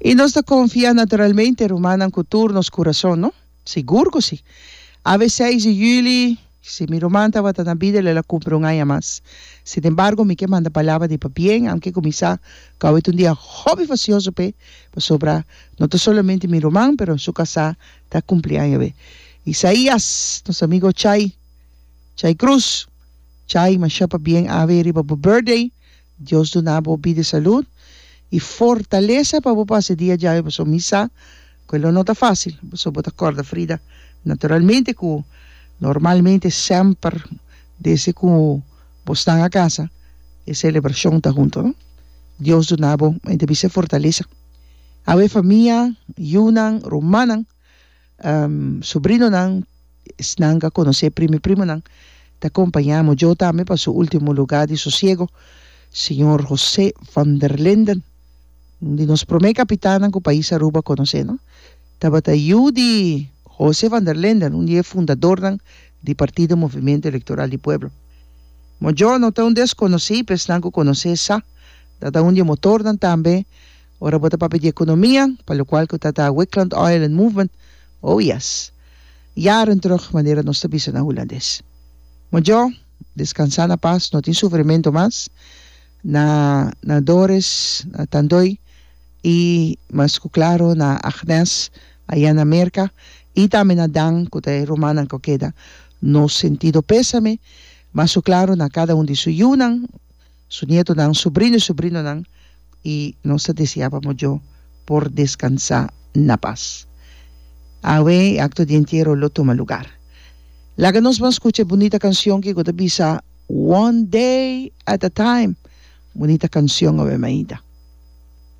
I nos ta konfia naturalmente rumannan ku tur nos kurason, no? Sigur ku si. A ve seis di juli, si mi ruman tabata na bida el a la kumpli un aña mas. Sinembargo, mi ke manda palabra di pabien, aunke ku mi sa ku awe ta un dia hopi fasioso p'e, pasobra no ta solamente mi ruman, pero en su kasá ta kumpli aña awe. Isaías, nos amigo Chay, Chay Cruz, Chay, masha pabien a ve riba bo birthday. Dios duna bo bida salud y fortalesa pa bo pasa e dia djawe paso mi sa cu e lo no ta facil paso bo ta corda Frida naturalmente cu normalmente semper desde cu bo snan a casa e celebracion ta hunto no Dios duna bo me ta bisa e fortalesa awe famia yunan rumannan Sobrinonan, esnan ka konosé primi primonan, ta kompañá amo djou tambe pa su último lugá di sosiego, señor José van der Linden, un di nos promé kapitannan ku pais Aruba a konosé, no. Tabata yu di José van der Linden, un di e fundadornan di Partido Movimiento Electoral di Pueblo. Mo djou no ta un deskonosí pa esnan ku konosé sa, ta ta un di e motornan tambe, Ora bo ta papia di economia, pa locual cu ta ta Wicklund Oil and Movement, oh yes! Jaren terug, manera nos ta bisa na Hulandes. Mojo, descansa na paz, no tin sufrimento mas, na na Doris, na Tandoi, y mas cu claro na Agnes, aya na Merca, y tambe na Dan, cu ta e rumannan cu keda, nos sentido pesame, mas cu claro na cada un di su yunan, su nietonan, subrino i subrinonan, i nos ta deseá pa mojo por deskansá na pas. Awe e akto di entiero lo tuma lugar. Laga nos ban skucha e bunita kansion ke ku ta bisa One Day at a Time. Bunita kansion awe mainta.